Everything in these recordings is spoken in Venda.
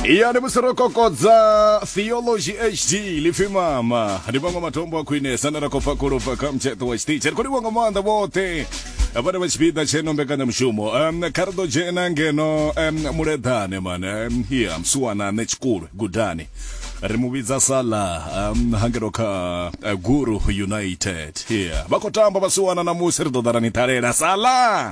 iya ndi musi ro kokodza theology hd lipfi mama ndi maṅwe matombo a khwinesa na ra khou fa kholofa kha mutsheṱo wa tshiṱitshi ri khou livha nga maanḓa vhoṱhe vhane vha tshipiḓa tsheno mbekanyamushumo um, kha ri ḓo dzhena ngeno um, muleḓane mane um, ya msuwana ṋe tshikulu gudani ri mu vhidza sala um, hangeno kha uh, guru united yeah. vha khou tamba vhasiwana na musi ri ḓo ḓa ra ni ṱalela sala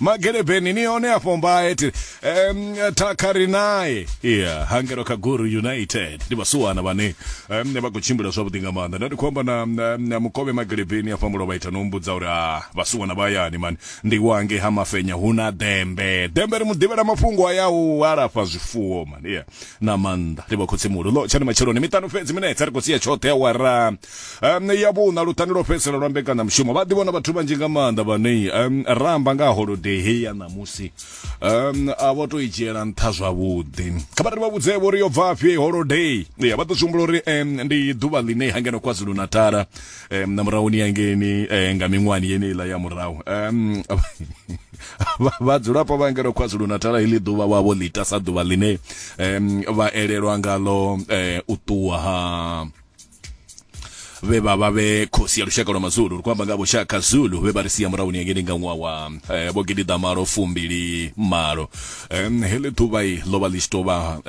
magelebheni ni one afho mbaye ti um, thakha ri naye yeah hangelo kha guru united ndi vhasuwana vhane um, vha khou tshimbila zwavhuḓi nga maanḓa nda ndi khou amba na, na, na mukovhe magelebheni afha mulo vha ita no mbudza uri a vhasuwana vha yani mani ndi wange ha mafenya hu na dembe dembe ri mu ḓivhela mafhungo a ya u alafha zwifuwo mani yeah na maanḓa livha khotsi muhulu ḽo tshani matsheloni miṱanu fhedzi minetse ri khou sia tshoṱhe awara um ya vhuṋa luṱani lwo fhedzisela lwa mbekana mushumo vha ḓivhona vhathu vhanzhi nga maanḓa vhanei um ramba nga holodei heyi ya ṋamusi um a vho to i dzhiela nṱha zwavhuḓi kha vhari vha vhudze vho ri yo bvafhi holodei ya vha ḓo zwi humbula uri um ndi ḓuvha ḽine hangeno kwazulu natala um na murahuni yangeni um nga miṅwani yeneiḽa ya murahu um vhadzulapo vha ngeno kwazulu natala heḽi ḓuvha wa vho ḽita sa ḓuvha ḽine um vha elelwa ngalo um u ṱuwa ha vhe vha vha vhe khosi ya lushaka lwa mazulu ri khou amba nga vhoshaka zulu vhe vha ri sia murahuni yangeni nga ṅwaha wa um vho gidiḓa malo fumbili malo heḽi ḓuvha i ḽo vha ḽi tshi tou vha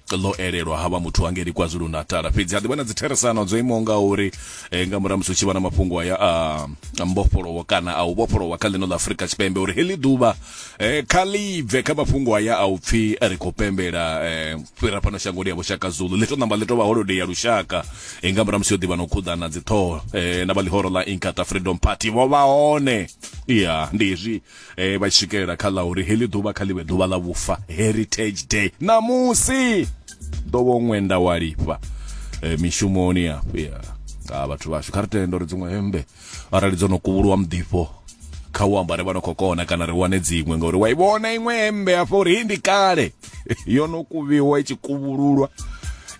ḽo elelwa ha vha muthu hangeli kwazulu natala fhedzi ha ḓivha na dzitheresano dzo imaho nga uri eh, nga murahu musi u tshi vha na mafhungo aya a mbofholowo kana a u vhofholowa kha ḽino ḽa afurika tshipembe uri heḽi ḓuvha eh, kha ḽi bve kha mafhungo aya a u pfhi ri khou pembela eh, fhira fhano shangoni ya vhushaka zulu ḽi to namba ḽi to vha holodei ya lushaka eh, nga murahu musi yo ḓivha na u khuḓana dziṱhoho eh, na vha ḽihoro ḽa inkata freedom party vho vha hone ya ndi hezwi e vha swikelela kha ḽa uri heḽi ḓuvha kha ḽivhe ḓuvha ḽa vhufa heritage day ṋamusi ḓo vho ṅwenda wa lifha e, mishumoni afha nga vhathu vhashu kha ri tende uri dziṅwe hembe arali dzo no kuvhuluwa muḓifho kha u ambare vha no khou kona kana ri wane dziṅwe ngauri wa i vhona iṅwe hembe afha uri hii ndi kale yo no kuvhiwa i tshi kuvhululwa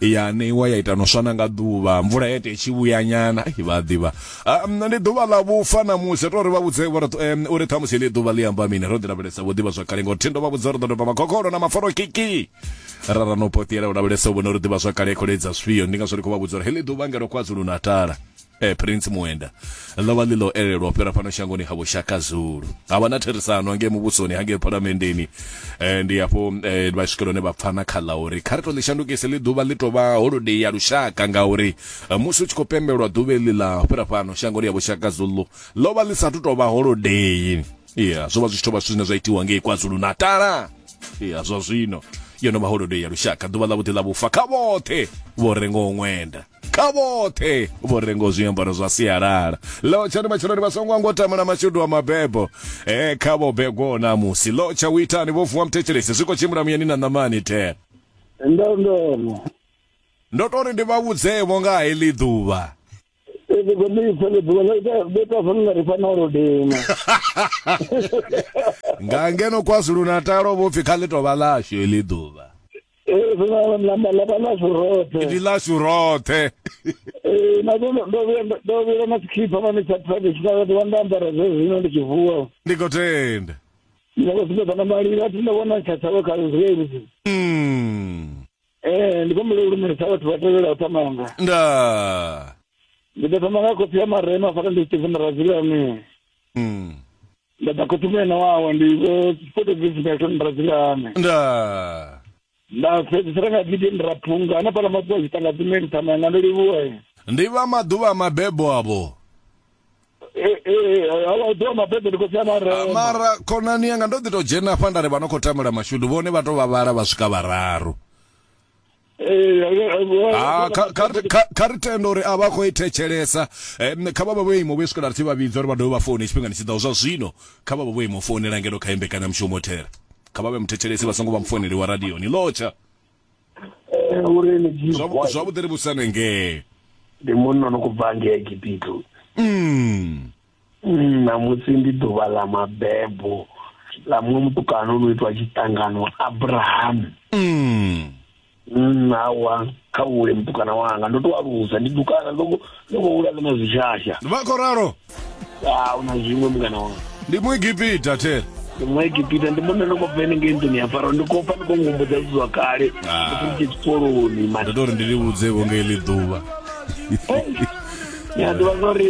ya neiwa ya ita no swana nga ḓuvha mvula ya ita i tshi vhuyanyana vha ḓivha ah, ndi ḓuvha ḽa vhufa na musi to ri vha vhudze uri ṱhamusi ḽi ḓuvha ḽi amba mini ro ḓi lavhelesa vho ḓivha zwakale ngo thindo vha vhudza uri ḓo doba makhokholo na maforo kiki rara no potiela u lavhelesa u vhona uri ḓivha zwakale kholedza zwifhio ndi ngazwo ri khou vha vhudza uri heḽi ḓuvha ngelo kwazulu natala eh, prince muenda ḽo vha ḽi ḽo elelwa u fhira fhano shangoni ha vhushaka zulu ha vha na therisano hangei muvhusoni hangei phalamendeni eh, ndi hafho eh, vha swikela hone vha pfana kha ḽa uri kha ri to ḽi shandukise ḽi ḓuvha ḽi tou vha holodei ya lushaka ngauri eh, musi u tshi khou pembelwa ḓuvha eḽi ḽa fhira fhano shangoni ya vhushaka zulu ḽo vha ḽi sathu tou vha holodei iya zwo vha zwi tshi tou vha zwithu zwine zwa itiwa ngei kwazulu natala iya zwa zwino yo no vha holodei ya lushaka ḓuvha ḽa vhuḓi ḽa vhufa kha vhoṱhe vho rengaho ṅwenda kha vhoṱhe vho rengo zwiambaro zwa sialala lotsha ndi matshelo ndi vha songo ngo tama na mashudu wa mabebo eh kha vho begwo na musi lotsha u itani vho vuwa mthetshelesi zwi khou tshimbila muyani na ṋamani the ndo ndo ndo to ri ndi vha vhudzevho nga heḽi ḓuvha Ebe kwa mi fele bwa la ita beta fanga ri fana ro dema. nga ngeno kwazulu natalo vho pfi kha ḽi tovha ḽashu heḽi ḓuvha ḽa ḽashu roṱhe ndi ḽashu roṱhe ee na ndo ndo vhuya ndo vhuya na tshikhipha mane tsha traditional ndi wanda ambara zwe zwino ndi tshi vuwa ndi khou tenda ndi khou sumbedza na malilo a thi ndo vhona tsha tshavho kha zwezi mm eh ndi khou mbele u lumelisa vhathu vha tevhela u tamanga nda ndi ḓo thoma nga khophi ya marema fara ndi tshivhi na radzilani mm Nda ḓa khothumela wawa ndi vho photography na ṱhoni brazilane. Nda. Nda fhedzisela nga video ndi raphunga ana pala makuwa zwi tanga dzine ndi tama nga ndo livhuwa. Ndi vha maḓuvha mabebo avho. Eh eh avho ḓo mabebo ndi khou tsha mara. Mara khonani yanga ndo ḓi to dzhena afha nda ri vha no khou tamela mashudu vhone vha to vhavhala vha swika vhararu. Ah, kha- kha ri- kha- kha ri tende uri a vha khou i thetshelesa Em, kha vha vha vho imo vho swikela ri tshi vha vhidza uri vha dovhe vha foune tshifhingani tshi ḓaho zwa zwino kha vha vha vho imo founela ngeno kha imbekanya mushumo thera kha vha vhe muthetshelesi vha songo vha mufouneli wa radio ni lotsha uri ni dzhii Zwa- boy. zwavhuḓi ri vhusane ngee ndi munna no kubva ngei egipito mm. Mm, ṋamusi ndi ḓuvha ḽa mabebo ḽa muṅwe mutukana o no itwa tshiṱangano abrahamu mm. mm, awa kha vhule mutukana wanga ndo to alusa ndi dukana ndo khou hula ḽi na zwishasha vha khou ralo a u na zwiṅwe mungana wanga ndi muegipita tere ndi muegipita ndi munna ndi khou bva henengei nḓuni ya faro ndi khou pfa ndi khou ngumbudza zwithu zwa kale ah. ndi khou tshikoloni mani ndo ri ndi livhudze vho ngei ḽi ḓuvha ya ḓuvha zwa uri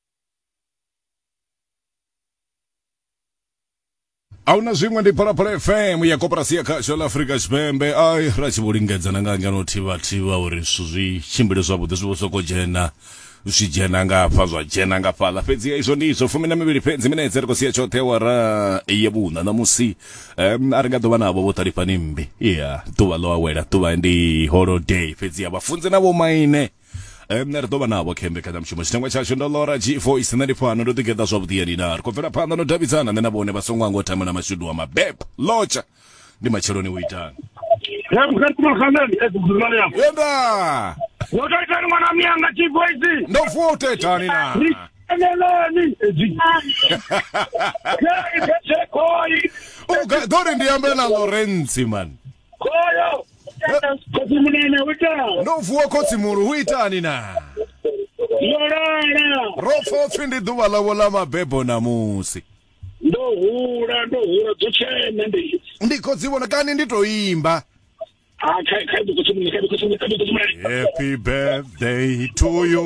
ahuna zwiṅwe ndi phalaphala fm ya koporasi ya khasho la afurika tshipembe ai ra tshi vho lingedza na nga ngeno thivhathiwa uri zwithu zwi tshimbile zwavhuḓi zwi vho soko dzhena zwi dzhena ngafha zwa dzhena nga fhaḽa fhedzi ya izwo ndi izwo fumi na mivhili fhedzi minetse ri khou sia tshoṱhe wara ye vhuṋa ṋamusi um, a ri nga ḓo vha navho vho ṱalifhani mmbi ya ḓuvha ḽo awela ḓuvha ndi holiday fhedzi ya vhafunzi na vhomaine Eh, nṋe ri ḓo vha navho khe mbekanyamushumo tshitangwa tshashu ndo lora g4 nṋe ndi fhano ndo ḓigeḓa zwavhuḓi ya nina ri khou bvela phanḓa no davhidzana nṋe na vhone vha songo anga u thamela mashudu wa mabebo lotsha ndi matsheloni u itani Ya mkhatima khaleni e dzudzulani yako. yenda Wo to itani mwana miyanga G-Voice. ndo vuwa u tou itani na Ri teneleni. Edzi. Ke i khethekoi. Uga- ḓo ri ndi ambe na lorentsi mani Khoyo. Khotsi munene hu itani? ndo vuwa khotsi mulu hu itani na Yo lala. ro pfa upfi ndi ḓuvha ḽavho ḽa mabebo ṋamusi Ndo hula ndo hula dzo tshena ndi. ndi khou dzi vhona kani ndi tou imba Ah kha kha khotsi munene kha khotsi munene kha khotsi munene. happy birthday to you